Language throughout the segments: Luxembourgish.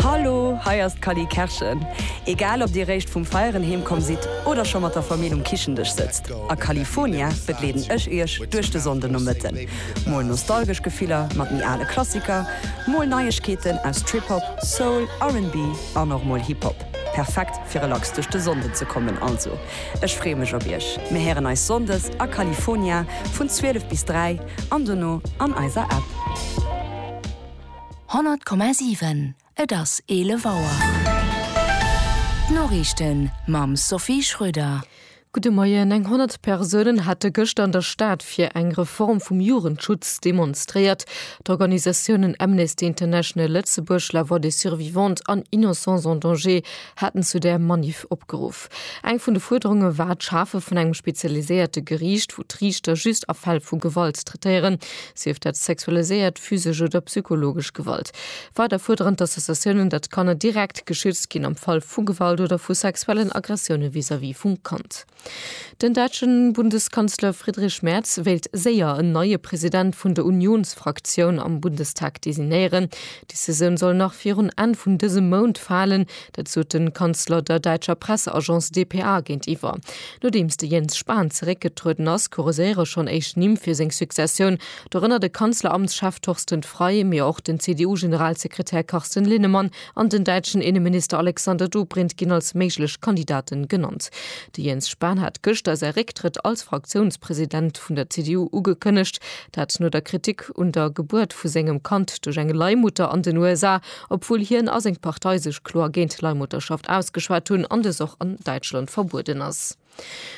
Hallo, hei ass d'Cally Kerschen. Egal ob dir réischt vum Feieren heem komm sidd oder scho mat der Famill um Kichendësch sëtzt, a California begleeden ech iech duerch de Sonndenomëtten. Mol nostalgesch Gefiller mat méi ale Klassiker, mol Neiegkeeten aus Trip-Hop, Soul, RnB an och mol Hip-Hop. Perfekt fir relax duerch de Sonnden ze kommen. Also ech freeë mech op iech. Mir héieren eis Sonndes a California vun 12 bis 3 an dono an eiser App. 100,7 Et ass 11 Auer. D'Noriichten mam Sophie Schröder. Gudde Moien. Eng 100 Persounen hate gëschter an der Stad fir eng Reform vum Jugendschutz demonstréiert. D'Organisatiounen Amnesty International Lëtzebuerg, La Voix des Survivantes an Innocence en Danger haten zu där Maniff opgeruff. Gesetz. Eng vun de Fuerderunge war d'Schafe vun engem spezialiséierte Geriicht, wou d'Riichter just a Fäll vu Gewalt traitéieren, sief dat sexualiséiert, physesch oder psychologesch Gewalt. Weider fuerderen d'Associatiounen, datt d'Kanner direkt geschützt ginn am Fall vu Gewalt oder vu sexuellen Aggressioune vis-à-vis vum Kand. Den däitsche Bundeskanzler Friedrich Merz wéilt séier en neie President vun der Unionsfraktioun am Bundestag designéieren. D'Decisioun soll nach virun Enn vun dësem Mount falen, Dat sot de Kanzler der däitscher Presseagence dpa géintiwwer. Nodeems de Jens Spahn zeréckgetrueden ass, kurséiere schonn éischt Nimm fir seng Successioun, dorënner de Kanzleramtschef Torsten Frei, mee och den CDU-Generalsekretär Carsten Linnemann an den däitschen Inneminister Alexander Dobrindt ginn als méiglech Kandidate genannt. De Jens Spahn hat gëschter säi Récktrëtt als Fraktiounspresident vun der CDU ugekënnegt, dat no der Kritik un der Gebuert vu sengem Kand duerch eng Leihmutter an den USA, obwuel hien a seng Partei sech kloer géint d'Leihmutterschaft ausgeschwat hunn an dës och an Däitschland verbueden ass.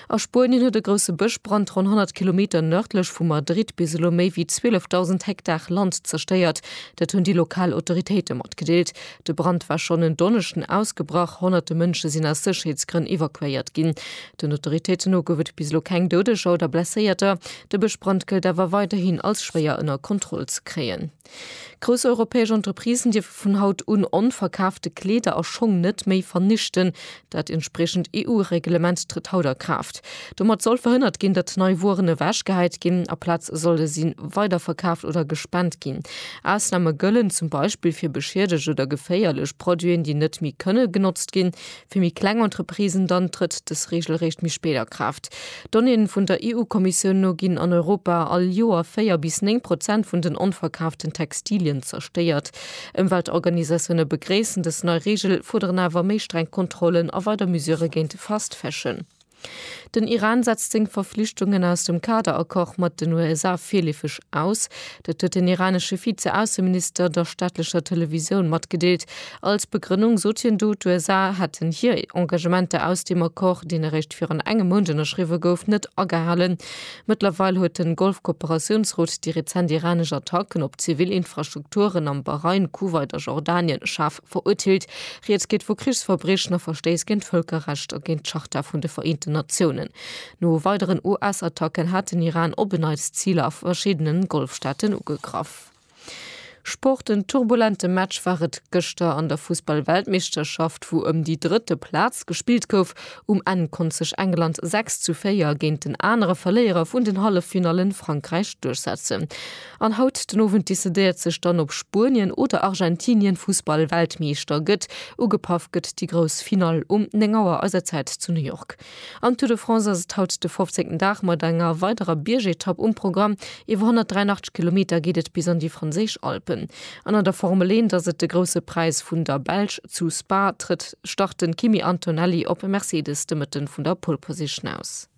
A Spuenien huet e grousse Bëschbrand ronn 100 Kilometer nërdlech vu Madrid bis elo méi wéi 12.000 Hektar Land zerstéiert. Dat hunn déi lokal Autoritéite matgedeelt. De Brand war schonn en Donneschden ausgebrach. Honnerte Mënsche sinn aus Sécherheetsgrënn evakuéiert ginn. Den Autoritéiten no gouf et bis elo keng Doudeger oder Blesséierter. De Bëschbrand gëllt awer weiderhin als schwéier ënner Kontroll ze kréien. Grouss europäesch Entreprisen dierfe vun haut un onverkaafte Kleeder a Schong net méi vernichten. Dat entspriechend EU-Reglement trëtt haut a Kraaft. Domat soll verhënnert ginn, datt nei Wueren ewechgehäit ginn. Aplaz solle si weiderverkaaft oder gespent ginn. Ausname gëllen zum Beispill fir beschiedegt oder geféierlech Produiten, déi net méi kënne genotzt ginn. Fir méi kleng Entreprisen dann trëtt dës Reegel eréischt méi spéit a Kraaft. Donnéeë vun der EU-Kommissioun no ginn an Europa all Joer 4 bis 9 Prozent vun den onverkaaften Textilien zerstéiert. Ëmweltorganisatioune begréissen dës nei Reegel, fuerderen awer méi streng Kontrollen a weider Mesurë géint de Fast Fashion. Den Iran setzt seng Verflichtungen aus dem Kader-Accord mat den USA virleefeg aus. Dat huet den iranesche Vize-Ausseminister der staatlecher Televisioun matgedeelt. Als Begrënnung sot hien do, d'USA hätten hir Engagementer aus dem Accord, deen eréischt virun engem Mount ënnerschriwwe gouf, net agehalen. Mëttlerweil huet de Golf-Kooperatiounsrot déi rezent iranesch Attacken op zivil Infrastrukturen am Bahrain, Kuwait a Jordanien schaarf Verurteelt. Rieds geet vu Krichsverbriechen a Verstéiss géint d'Vëlkerrecht a géint d'Charta vun de Vereenten Natiounen. No weideren US-Attacken hat den Iran op en Neits Ziler a verschiddene Golfstaaten ugegraff. Sport, En turbulente Match war et gëschter an der Fussball-Weltmeeschterschaft, wou ëm déi drëtte Plaz gespillt gouf. Um Enn konnt sech England 6 zu 4 géint den anere Verléierer vun den Halleffinallen, Frankräich, duerchsetzen. An haut den Owend decidéiert sech dann op Spuenien oder Argentinien Fussball Weltmeeschter gëtt. Ugepaff gëtt déi grouss Finall um 9 Auer eiser Zäit zu New York. Am Tour de France ass et haut de 15. Dag mat enger weiderer Biergetapp um Programm. Iwwer 183 Kilometer geet et bis an déi franséisch Alpen. An an der Formel Eent ass et de Grousse Präis vun der Belsch. Zu Spa trëtt start den Kimi Antonelli op Mercedes de Mëtten vun der Pole Position aus.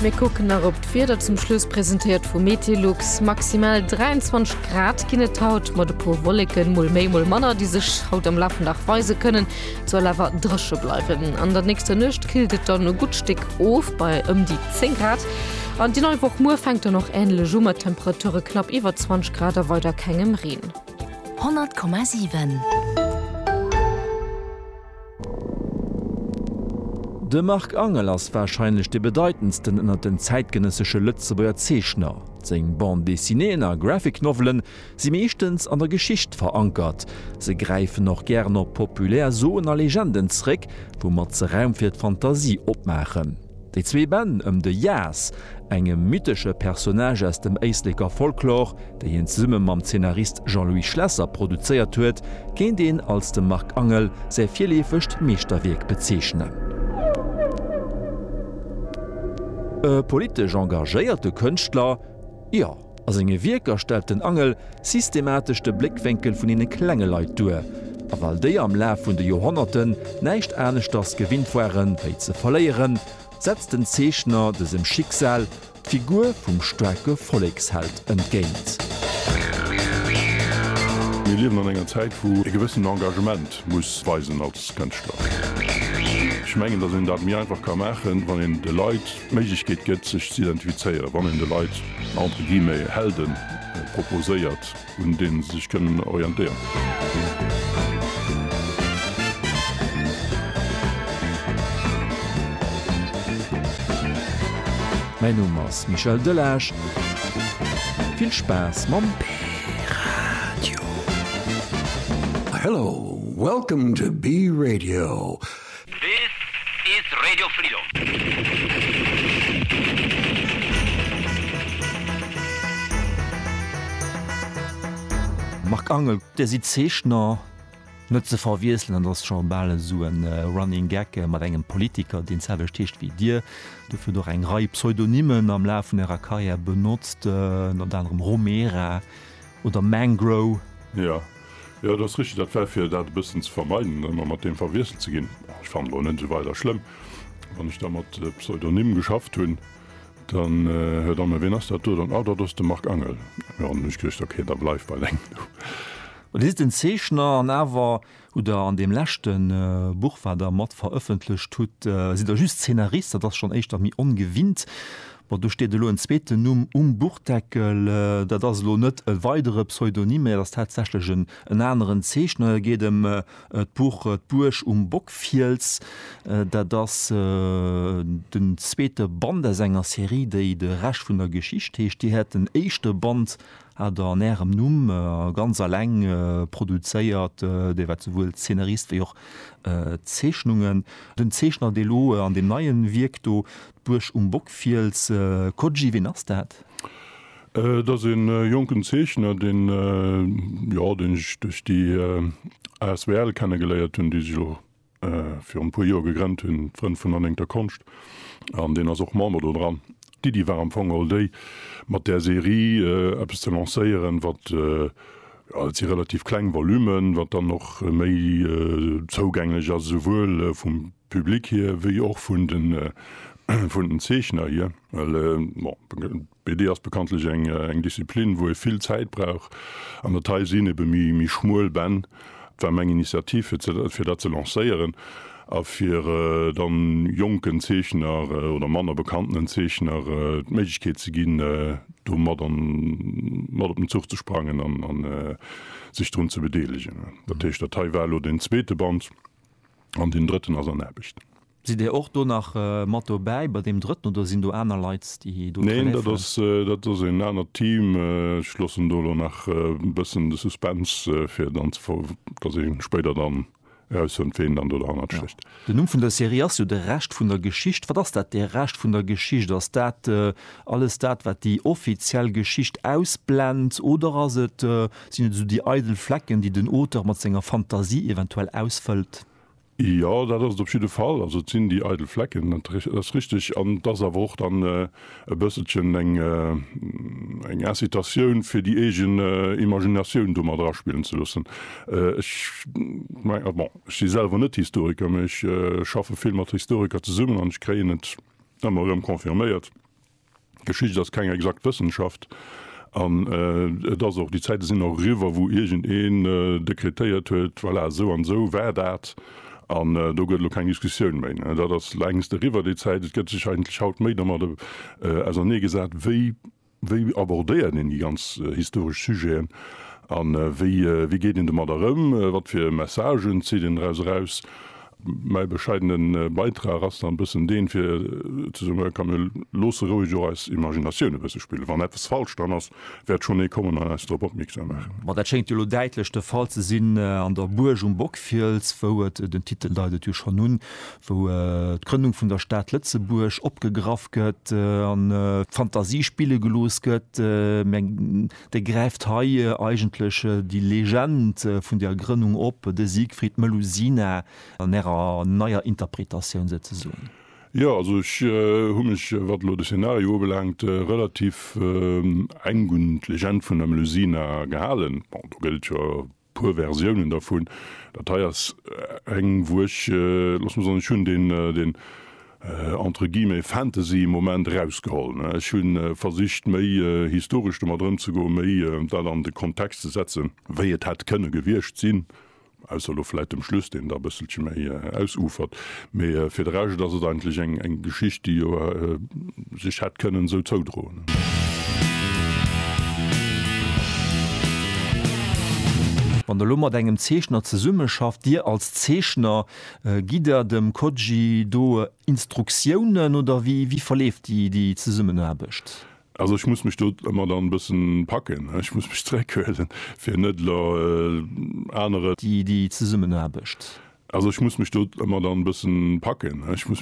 Mir kucken nach op d'Wieder zum Schluss, presentéiert vu Metelux. Maximal 23 Grad ginn et haut, mat e puer Wolleken, mol méi, mol manner, déi sech haut am Laf vum Dag weise kënnen. Et soll awer dréche bleiwen. An der nächster Nuecht killt et dann e gutt Stéck of, bei ëm déi 10 Grad. An déi nei Woch muer fänkt dann och änlech u, mat Temperature knapp iwwer 20 Grad a weider kengem Reen. 100,7. De Marc Angel ass warscheinlech dee bedeitendsten ënnert den zäitgenëssesche Lëtzebuerger Zeechner. Seng Bande dessinéeën a Graphic Novelen si meeschtens an der Geschicht verankert. Se gräifen och gären op populär Soen a Legenden zréck, woumat se Raum fir d'Fantasie opmaachen. Déi zwee Bänn ëm de Jas, engem mythesche Personnage aus dem Éisleker Folklor, déi hien zesumme mam Zeenarist Jean-Louis Schlesser produzéiert huet, kéint een als dem Marc Angel säi virleefegt Meeschterwierk bezeechnen. E politesch engagéierte Kënschtler? Jo. A senge Wierker stellt den Angel systematesch de Bléckwénkel vun deene klenge Leit duer, a well déi am Laf vun de Joerhonnerten näischt aneschters gewinnt ware wéi ze verléieren, setzt den Zeechner dësem Schicksal d'Figur vum staarke Volleksheld entgéint. Mir liewen an enger Zäit, wou ee gewëssent Engagement muss weisen als Kënschtler. Ech mengen, datt een dat méi einfach ka maachen, wann een de Leit d'Méiglechkeet gëtt sech z'identifizéieren, wann een de Leit entre guillemets Helden proposéiert, un deene se sech kënnen orientéieren. Mäin Numm ass Michel Delage, vill Spaass mam P-Radio! Hello, welcome to P-Radio. This is Radio Freedom. Marc Angel, Dir sidd Zeechner, net ze verwiesselen, dat ass scho bal esou e Running Gag, mat engem Politiker, deen d'selwecht heescht wéi Dir. Dofir hutt Der och eng Rei Pseudonymen am Laf vun Ärer Karriär benotzt, ënner anerem Romera oder Mangro. Jo. Jo, et ass richteg, dat war fir dat e bëssen ze vermeiden, ëmmer mat deem verwiesselt ze ginn. Ech fannen elo net esou weider schlëmm, wann ech da mat Pseudonym geschafft hunn, dann, Här Damme, ween ass dat do dann? Ah, dat ass de Marc Angel. Jo, an dann hu ech geduecht, ok, da bleift bei leng do. Dir sidd den Zeechner an awer hutt der an deem leschte Buch, wat der mat verëffentlecht hutt, sidd der just Zeenarist. Dat ass schonn éischter méi ongewinnt. Bon, do steet elo en zweeten Numm um Buchdeckel. Dat ass elo net e weidere Pseudonym, mä et ass tatsächlech en aneren Zeechner. Et geet ëm d'Buch D'Buerg um Bockfiels. Dat ass den zweete Band aus enger Serie, déi De Rescht vun der Geschicht heescht. Dir hätt den éischte Band hat Der an Ärem Numm ganz alleng produzéiert, Dir waart souwuel Zeenarist wéi och Zeechnungen. Den Zeechner, dee lo an deem neien Wierk do D'Buerg um Bockfiels, Coggi, ween ass dat? Et ass e jonken Zeechner, deen jo deen ech duerch déi asbl kenne geléiert hunn, déi sech elo virun e puer Joer gegrennt hunn, d'Frënn vun der néngter Konscht, an deen ass och Member do dran. D'Iddi war am Fong all déi, mat där Serie eppes ze lancéieren, wat, jo et si relativ kleng Volumen, wat dann och méi zougänglech ass, esouwuel vum Public hier, wéi och vun den Zeechner hier. Well BD ass bekanntlech eng Disziplin, wou ee vill Zäit brauch, an dat hei sinn ebe méi schmuel Bänn. Et war meng Initiativ, fir dat ze lancéieren a fir da jonken Zeechner oder manner bekanntenen Zeechner d'Méiglechkeet ze ginn, do mat op den Zuch ze sprangen a sech drun ze bedeelegen. Dat heescht, dat hei war elo den zweete Band. An deen drëtten ass an Aarbecht. Sidd Dir och do nach mat dobäi bei deem drëtten oder sinn do aner Leit, déi do hëllefen? Neen, dat ass een anert Team. Ech loossen do elo nach e bëssen de Suspense, fir dann, datt ee spéider dann erausfënnt, wien dann do derhannert stécht. Den Numm vun der Serie ass jo De Rescht vun der Geschicht. Wat ass dat, de Rescht vun der Geschicht? Ass dat alles dat, wat déi offiziell Geschicht ausblennt oder ass et Sinn et esou déi eidel Flecken, déi den Auteur mat senger Fantasie eventuell ausfëllt? Jo, dat ass et op jidde Fall. Also et sinn déi eidel Flecken, dat ass richteg. An et ass awer och dann e bësselchen eng Incitatioun, fir déi eegen Imaginatioun do mat eraspillen ze loossen. Ech mengen, bon, ech si selwer net Historiker, mee ech schaffe vill mat Historiker zesummen an ech kréien et ëmmer erëm confirméiert, Geschicht ass keng exakt Wëssenschaft an et ass och, déi Zäite sinn och eriwwer, wou iergend een dekretéiert huet, voilà, esou an esou war dat an do gëtt elo keng Diskussioun méi. Dat ass längst eriwwer, déi Zäit. Et gëtt sech eigentlech haut méi domat ausernee gesat, wéi, wéi abordéiert een déi ganz historesch Sujeten a wéi, wéi geet een domadder ëm, wat fir Messagen zitt een doraus eraus Mäi bescheidene Beitrag ass dann e bëssen deen, fir ze soen, Komm, mir loosse roueg och eis Imaginatioun e bësse spillen. Wann eppes falsch dran ass, wäert schonn ee kommen an eis drop opmierksam maachen. Ma dat schéngt jo elo däitlech de Fall ze sinn an der Buerg um Bockfiels, wou et, den Titel deit et jo schonn un, wou d'Grënnung vun der Stad Lëtzebuerg opgegraff gëtt an Fantasie spille gelooss gëtt. Dee gräift hei eigentlech déi Legend vun der Grënnung op, de Siegfried Melusina an ärer neier Interpretatioun souzesoen. Jo, also ech hu mech, wat elo de Szenario ubelaangt, relativ enk un d'Legend vun der Melusina gehalen. Bon, do gëllt jo, Puer Versiounen dervun. Dat hei ass eng wou ech, looss mer soen, ech hunn deen entre guillemets Fantasy Moment erausgeholl. Ech hu versicht méi historesch domat ëmzegoen, méi dat an de Kontext ze setzen, wéi et hätt kënne gewiescht sinn, ausser elo vläit dem Schluss, deen da e bësselche méi ausufert. Mee fir de Rescht ass et eigentlech eng Geschicht, déi jo sech hätt kënnen esou zoudroen. Wann Der elo mat engem Zeechner zesummeschafft, Dir als Zeechner, gitt Der dem Koji do Instruktiounen oder wéi verleeft déi Zesummenaarbecht? Also ech muss mech do ëmmer dann e bëssen packen, ech muss mech zréckhuelen, fir net elo anere. Déi Zesummenaarbecht. Also ech muss mech do ëmmer dann e bëssen packen, ech muss.